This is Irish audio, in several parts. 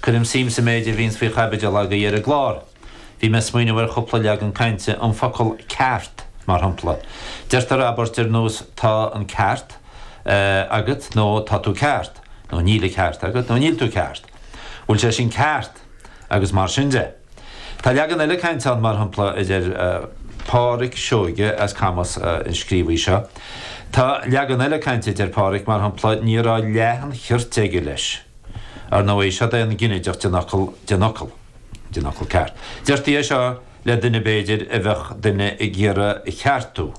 Cuirim suim sa méid a bhíonns faoi chaibidil agaibh ar an gclár. Bhí mé ag smaoineamh thar chúpla leagan cainte, an focal 'ceart' mar shampla. Deirtear abairt ar nós 'tá an ceart agat' nó 'tá tú ceart' nó 'níl an ceart agat' nó 'níl tú ceart'. 'Bhfuil sé sin ceart? agus mar sin de. Tá leagan eile cainte ann mar shampla, a deir Pádhraic Seoige as Camas, an scríobhaí seo. Tá leagan eile cainte a deir Pádhraic, mar shampla, 'ní raibh leath an chirt aige' leis'. Ar ndóigh, seod é an ginideach den fhocal den fhocal, den fhocal ceart. Deirtí é seo le duine b'fhéidir a mbeadh duine ag iarraidh é a cheartú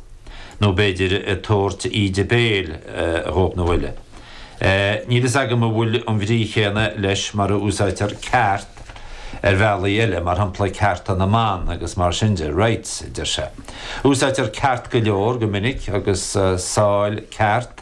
nó b'fhéidir ag tabhairt íde béil dhó nó eile. Níl fhios agam an bhfuil an bhrí chéanna leis mar a úsáidtear ceart ar bhealaí eile, mar shampla cearta na mban agus mar sin de, rights a deir sé. Úsáidtear ceart go leor, go minic, agus sách ceart.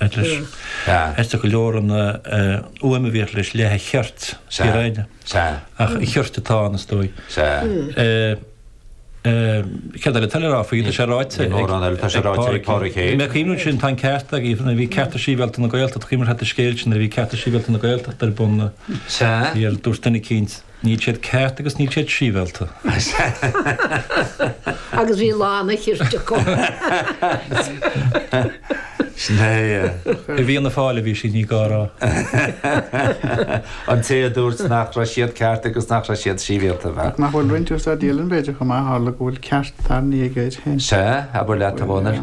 Is aisteach go leor an fhuaim a bhíodh leis, leath an chirt, ciorrain, ach chirt atá ann is dóigh. Céard eile atá le rá faoi? Tá sé ráite ag Pádraig é. Mé cuimhneamh ansin tá an ceart agat, Aoife, nuair a bhí Cearta Sibhialta na Gaeltachta, is cuimhin leat an scéal sin nuair a bhí Cearta Sibhialta na Gaeltachta ar bun, dúirt duine eicínt, Níl siad ceart agus níl siad sibhialta. Agus bhí lán an chirt acu. Sin é é. I bhFianna Fáil a bhí sí, ní gá a rá. An té a dúirt nach raibh siad ceart agus nach raibh siad sibhialta, bhuel. Nach bhfuil roinnt ar Staid Díleann b'fhéidir chomh maith, tharla go bhfuil ceart tarraingthe aige air féin. Sea, abair leat a Dhónaill.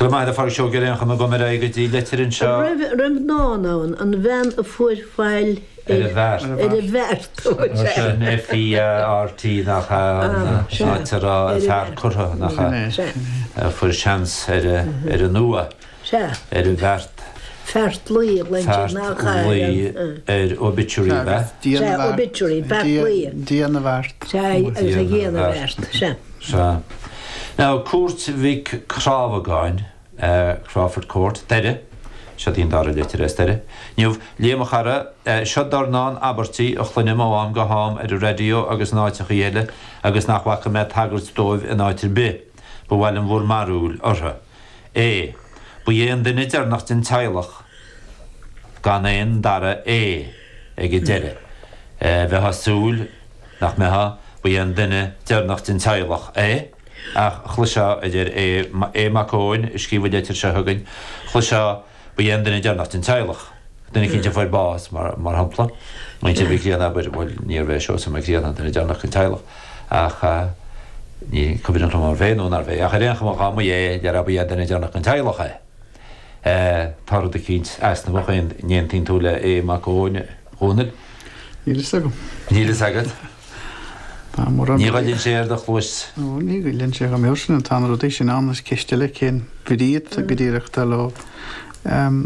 Go raibh maith agat a Phádraig, seo gearrán, chun go gcaithfidh ar aghaidh go dtí litir anseo. raibh raibh dán ann, an bhean a fuair faill ar an bhfeart. ar an bhfeart. Sin F.E.A.R.T. nach ea an áit a raibh a fear curtha nach ea? Sin é. a fuair seans ar an uaigh. Sea. ar an bhfeart. Feartlaoi a ghlaointear Feartlaoi nach gairid an. ar obituary Sea, bhfeart. Dia na sea, bhfeart. obituary, beart Dia- luí. Dia na bhfeart. Sea, is Dia ag na Dhia na bhfeart. bhfeart. Sea. Sea. Now, Cúirt Mhic Rábhagáin, eh, Crawford Court, deireadh, seo dtí an dara litir is deireanaí, inniu, Liam a chara, eh, seo dornán abairtí a chluinim ó am go ham ar an raidió agus in áiteachaí eile agus nach bhfaca mé tagairt dóibh in áit ar bith. Ba mhaith liom bhur mbarúil orthu. é. B'iod é an duine deireanach den teaghlach gan aon dara é ag an deireadh. Bheifeá ag súil nach mbeadh B'iod é an duine deireanach den teaghlach é ach chloisfeá a deir É. Mac Eoin a scríobh an litir seo chugainn. Chloisfeá. Ba é an duine deireanach den teaghlach, duine eicínt a fuair bás, mar shampla, muintir Mhic Grianna, abair, bhuel, níorbh é Seosamh Mac Grianna an duine deireanach den teaghlach ach ní cuimhin liom an bh'é nó nár bh'é ach ar aon chuma dhá mb'é, déarfá ba é an duine deireanach den teaghlach é. Tá rud eicínt easnamhach ann. An aontaíonn tú leis, a Mhic Dhónaill? Níl fhios agam. Níl fhios agat? Tá mura Ní mbeidh. ghoilleann sé ar do chluas. Nó ní ghoilleann sé chomh mór sin. Tá na rudaí sin ann, is ceist eile cén bhrí go díreach atá leo.